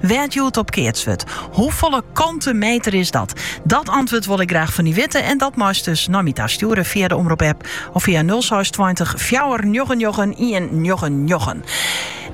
Wêr't hjoed op keatst wurdt. Hoefolle kante meter is dat? Dat antwurd wol ik graach fan dy witte en dat meist dus nei my ta stjoere fia de omrop app of fia 0620 fjouwer njoggen njoggen ien njoggen njoggen.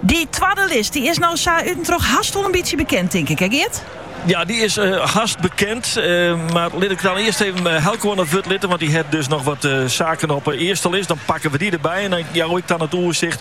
Dy twadde list dy is no sa út en troch hast wol in bytsje bekend, tink ik, hè Geart? Ja, dy is hast bekend. Mar lit ik dan earst even Eelco oan it wurd litte, want dy hat dus noch wat saken op 'e earste list. Dan pakken we dy derby en dan jou ik dan it oersicht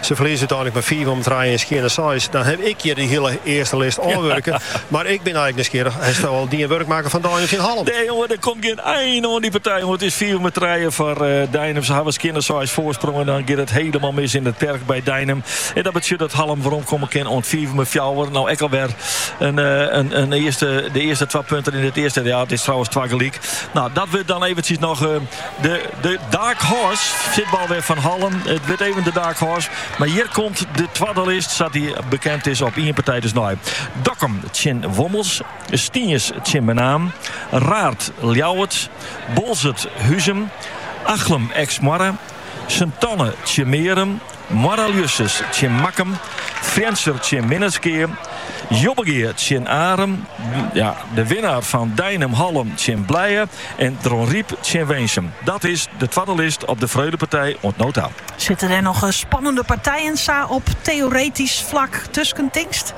Se ferlieze úteinlik mei fiif mei trije en skjinne seis. Dan haw ik hjir dy hiele earste list ôfwurke. Mar ik bin eigentlik nijsgjirrich, hasto al dien wurk makke fan Deinum tsjin Hallum? Nee jonge, der komt gjin ein oan dy partij, jonge. It is fiif mei trije foar Deinum. Se hawwe skjinne seis foarsprong en dan giet it hielendal mis yn it perk by Deinum. En dat betsjut dat Hallum weromkomme kin oant fiif mei fjouwer. No ek al wer de earste twa punten yn it earste. Ja, it is trouwens twa gelyk. No, dat wurdt dan eventsjes noch. De Dark Horse sitbal wer fan Hallum. It wurdt even de Dark Horse. Mar hjir komt de twadde list, sa't dy bekend is, op ien partij dus nei. Dokkum tsjin Wommels, Stiens tsjin Menaam, Raard Ljouwert, Boalsert Huzum, Achlum Eksmoarre, Sint Anne tsjin Marrum, Moarre-Ljussens tsjin Makkum, Frjentsjer tsjin Minnertsgea, Jobbegea tsjin Arum, de winnaar fan Deinum Hallum tsjin Blije en Dronryp tsjin Winsum. Dat is de twadde list op de Freulepartij oant no ta. Sitte der noch spannende partijen sa op teoretysk flak tusken, tinkst?